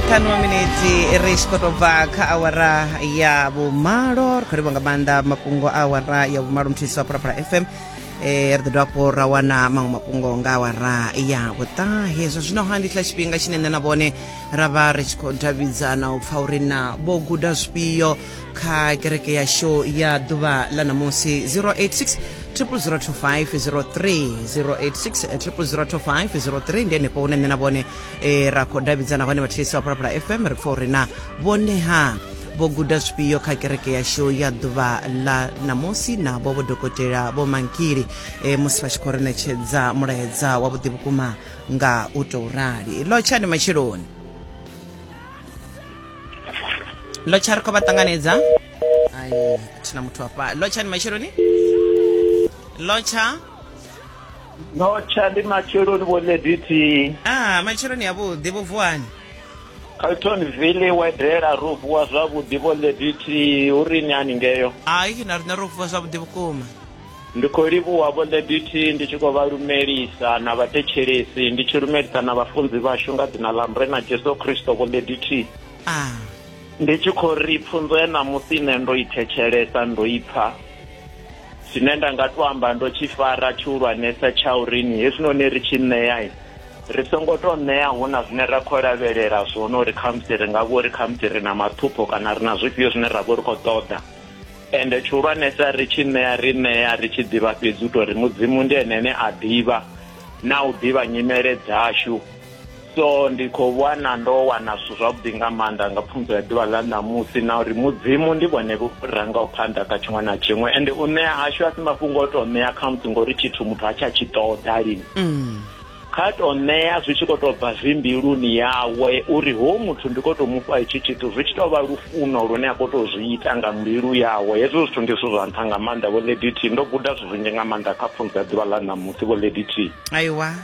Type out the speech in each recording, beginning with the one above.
ṱhanu miniti ri tshi khou tou bva kha awara ya vhumalo ri khou livha nga maanḓa mafhungo a awara ya vhumalo muthihi wa phalaphala fm eh ri ḓo dovha hafhu ra wana maṅwe mafhungo nga awara ya vhuṱahe zwa zwino ha ndi tshila tshifhinga tshine nṋe na vhone ra vha ri tshi khou davhidzana u pfa uri na vho guda zwifhio kha kereke ya show ya ḓuvha ḽa ṋamusi 086 002503 086 002503 ndi henefho hune nṋe na vhone e ra khou davhidzana hone vhathetshelesi vha phalaphala fm ri pfa uri na vhone ha vho guda zwifhio kha kereke yashu ya ḓuvha ḽa ṋamusi navho vho dokotela vho mankili e, musi vha tshi khou ri ṋetshedza mulaedza wavhuḓi vhukuma nga u tou rali lo tshani matsheloni lo tsha ri khou vha ṱanganedza ai thina muthu afha lo tshani matsheloni lo tsha no tsha ndi matsheloni vho lady t ah matsheloni avhuḓi vho vuwani caltonville wedela ro vuwa zwavhuḓi vho lady t hu ri ni haningeyo hai na riṋe ro vuwa zwavhuḓi vhukuma ndi khou livhuwa vho lady t ndi tshi khou vha lumelisa na vhathetshelesi ndi tshi lumelisa na vhafunzi vhashu nga dzina ḽa murena jesu kristo vho lady t ah ndi tshi khou ri pfunzo ya ṋamusi nṋe ndo i thetshelesa ndo i pfha tshine nda nga to amba ndo tshi fara tshihulwanesa tsha urini hezwinoni ri tshi ṋea ri songo to ṋea hu na zwine ra khou lavhelela zwone uri khamusi ri nga vho ri khamusi ri na mathupho kana ri na zwifhio zwine ra vho ri khou ṱoḓa ende tshihulwanesa ri tshi ṋea ri ṋea ri tshi ḓivha fhedzi u tori mudzimu ndi ene ane a ḓivha na u ḓivha nyimele dzashu So, ndi khou vhona ndo wana zwithu zwavhuḓi nga maanḓa nga pfunzo ya ḓuvha ḽa ṋamusi, na uri Mudzimu ndi vhone vho rangaho phanḓa kha tshiṅwe na tshiṅwe, ende u ṋea hashu a si mafhungo o tou ṋea khamusi ngori tshithu muthu ha tsha tshi ṱoḓa lini. Mm. Kha tou ṋea zwi tshi khou tou bva zwi mbiluni yawe uri hoyu muthu ndi khou tou mu fha hetshi tshithu, zwi tshi tou vha lufuno lune a khou tou zwi ita nga mbilu yawe. Hezwo zwithu ndi zwithu zwa nṱha nga maanḓa, Vho Lady T. Ndo guda zwithu zwinzhi nga maanḓa kha pfunzo ya ḓuvha ḽa ṋamusi, Vho Lady T. Aiwa.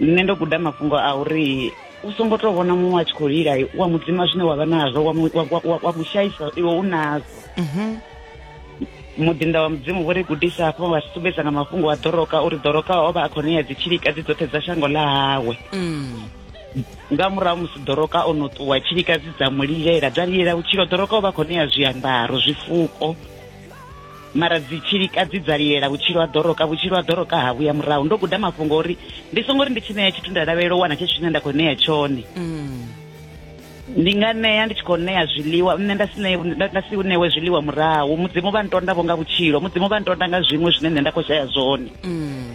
nṋe ndo guda mafhungo a uri u songo tou vhona muṅwe a tshi khou lila wa mudzima zwine wa vha nazwo wa mu- wa- wa- wa- wa mu shaisa iwe u nazwo Mhm. muḓinḓa wa mudzimu vho ri gudisa hafho wa ri sumbedza nga mafhungo a ḓoroka uri ḓoroka o vha a khou ṋea dzitshilika dzi dzoṱhe dza shango ḽa hawe Mm. nga murahu musi ḓoroka o no ṱuwa tshilikadzi dza mu lilela dza lilela vhutshilo ḓoroka o vha a khou ṋea zwiambaro zwifuko mara dzitshilika dzi dza lilela vhutshilo ha ḓoroka vhutshilo ha ḓoroka ha vhuya murahu ndo guda mafhungo uri ndi songo ri ndi tshi ṋea tshithu nda lavhelela u wana tshetsho tshine nda khou ṋea tshone mm. ndi nga ṋea ndi tshi khou ṋea zwiḽiwa nṋe nda si nda si ṋewe zwiḽiwa murahu mudzimu vha ntonda vho nga vhutshilo mudzimu vha ntonda nga zwiṅwe zwine nṋe nda khou shaya zwone mm.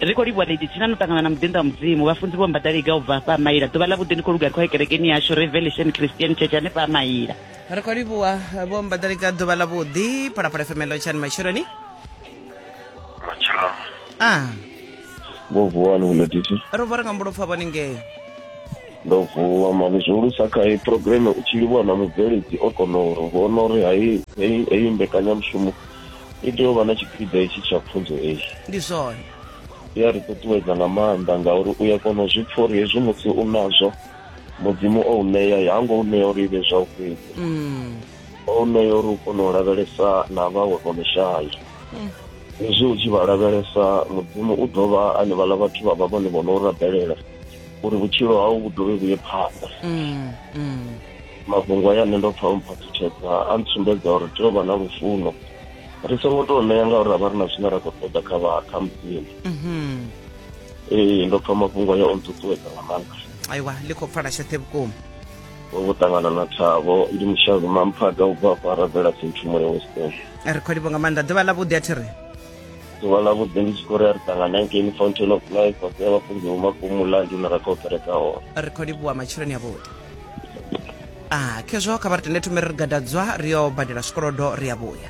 ri khou livhuwa lady thina no ṱangana na muḓinḓa wa mudzimu vhafunzi vho mbadaliga u bva hafha amaila ḓuvha ḽa vhuḓi ndi khou luga ri khou ya kerekeni yashu revelation christian church hanefha amaila ri khou livhuwa vho mbadalika ḓuvha ḽa vhuḓi phalaphala femelo tshani matshiloni matshiloni a vho vuwa ni vhuletisi ro vhora nga mbulopfa vhone ngei ndo vuwa mani zwihulusa kha iyi programe u tshi livhuwa na mubveledzi o kona uri vhona uri hai heyi heyi mbekanyamushumo i tea u vha na tshipiḓa hetshi tsha pfunzo eyi ndi zwone i a ri ṱuṱuwedza nga maanḓa ngauri u ya kona u zwi pfha uri hezwi musi u nazwo mudzimu o u ṋea ha ngo u ṋea uri ivhe zwa u fhedzi mm. o u ṋea uri u kone u lavhelesa na vhawe vho no shaya mm. hezwi u tshi vha lavhelesa mudzimu u dovha ane vhala vhathu vha vha vhone vho no rabelela uri vhutshilo hau vhu dovhe vhuye phanḓa mm, mafhungo aya nṋe ndo pfa o mphaṱutshedza a ntsumbedza uri tea u vha na lufuno ri songo tou ṋea ngauri ra vha ri na zwine ra khou ṱoḓa kha vha kha mudzimu mm-hmm. ee ndo pfa mafhungo ayo o nṱuṱuwedza nga maanḓa aiwa ḽi khou pfala tshoṱhe vhukuma vho ṱangana na thabo ndi mushavi mamphaga u bva fara bvela senthumo ya western ri khou livho nga maanḓa ḓuvha ḽa vhuḓi a thi ri ḓuvha ḽa vhuḓi ndi tshi khou ri a ri ṱangana ngeni fountain of life vhasea vhafunzi vho makumula ndi hune ra khou kereka hone ri khou livhuwa matsheloni a vhuḓi a khezwo kha vha ri tende thome ri ri gadadzwa ri yo badela zwikolodo ri a vhuya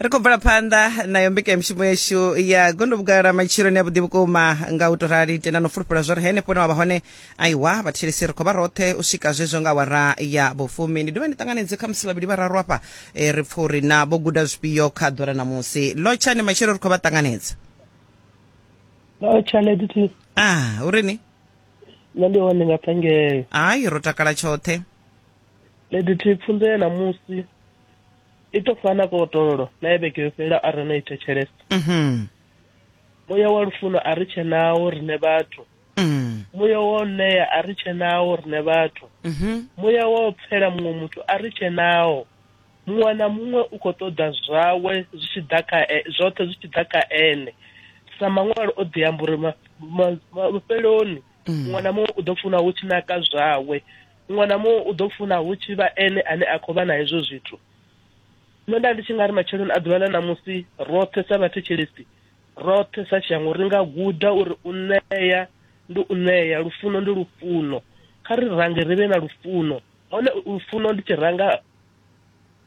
ri khou bvela phanḓa nayo mbekanyamushumo yashu ya gondo vhugala matshiloni ya vhuḓi vhukuma nga u to rali tenda no fulufhela zwori henefho hune wa vha hone aiwa vhathetshelesi ri khou vha roṱhe u swika zwezwo nga awara ya vhufumi ndi dovha ndi ṱanganedze kha musi vhavhili vhararu afha eh, ri pfa uri na vho guda zwifhio kha ḓora ṋamusi lotshani matshelo ri khou vha ṱanganedza Oh, Charlotte T. ah u ri ni Nṋe ndi hone nga phangele. hayi ro takala tshoṱhe Medithi pfunzo ya ṋamusi i to fana ka otololo na ya vhege yo fhela a re no i thetshelesa mhm. muya wa lufuno a ri tshenawo rine vhathu mm. muya wa u ṋea a ri tshenawo rine vhathu mhm. muya wa u pfela muṅwe muthu a ri tshenawo muṅwe na muṅwe u khou ṱoḓa zwawe zwi tshi ḓa kha e, zwoṱhe zwi tshi ḓa kha ene sa maṅwalo o ḓi amba uri mafheloni mm. muṅwe na muṅwe u ḓo funa hu tshi naka zwawe muṅwe na muṅwe u ḓo funa hu tshi vha ene ane a khou vha na hezwo zwithu nṋe nda ndi tshi nga ri matsheloni a ḓuvha ḽa ṋamusi roṱhe sa vhathetshelesi roṱhe sa shango ri nga guda uri u ṋea ndi u ṋea lufuno ndi lufuno kha ri range ri vhe na lufuno hone lufuno ndi tshi ranga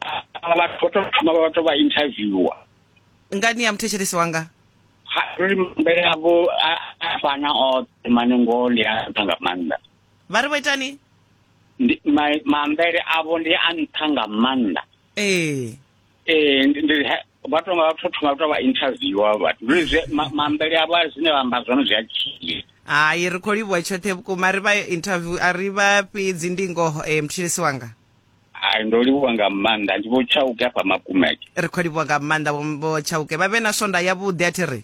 a- a- vhathu vho to thoma vha to vha interviewer ngani ya muthetshelesi wanga Ha, ri mbele avho a a fana oṱhe mane ngoho ndi a nṱha nga maanḓa vha ri vho itani Ndi- ma- mambele avho ndi a nṱha nga maanḓa ee ee ndi- ndi- he- vha to nga vha to thoma vha to vha interviewer vhathu Ri zwe- ma- mambele avho a zwine vha amba zwone zwi a tshia hai ri khou livhuwa tshoṱhe vhukuma ri vha interview a ri vha fhedzi ndi ngoho um thetshelesi wanga ai ndo livhuwa nga maanḓa ndi vho tshauke afha makumeke ri khou livhuwa nga maanḓa vho tshauke vha vhe na swonda yavhuḓi a thi ri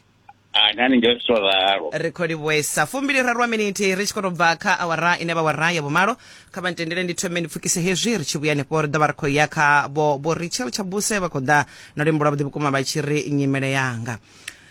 nani ngeo zwo ralo ri khou livhuesa fumbili raru wa minithi ri tshi khou tou bva kha awara ine vha wara ya vhumalo kha vha ntendele ndi thome ndi pfukise hezwi ri tshi vhuya hanefho ri ḓo vha ri khou ya kha vho vho richel tshabuse vha khou ḓa na luimbo lwavhuḓi vhukuma vha tshi ri nyimele yanga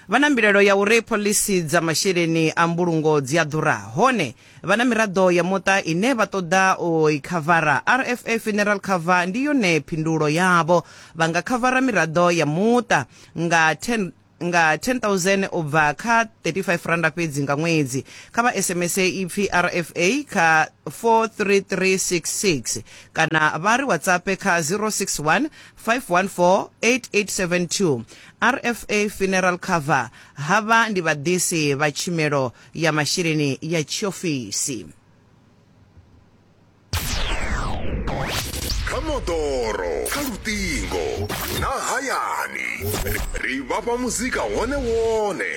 vha na mbilelo ya uri phoḽisi dza masheleni a mbulungo dzi a ḓura hone Vha na miraḓo ya muṱa ine vha ṱoḓa u i khavara. RFA Funeral Cover ndi yone phindulo yavho. Vha nga khavara miraḓo ya muṱa nga 10 nga 10000 u bva kha 35 randa fhedzi nga ṅwedzi kha vha sms ipfi rfa kha 43366 kana vha ri whatsapp kha 061 514 8872 rfa funeral cover havha ndi vhaḓisi vha tshimelo ya masheleni ya tshiofisi kha moḓoro kha luṱingo na hayani ri vhafha muzika wone wone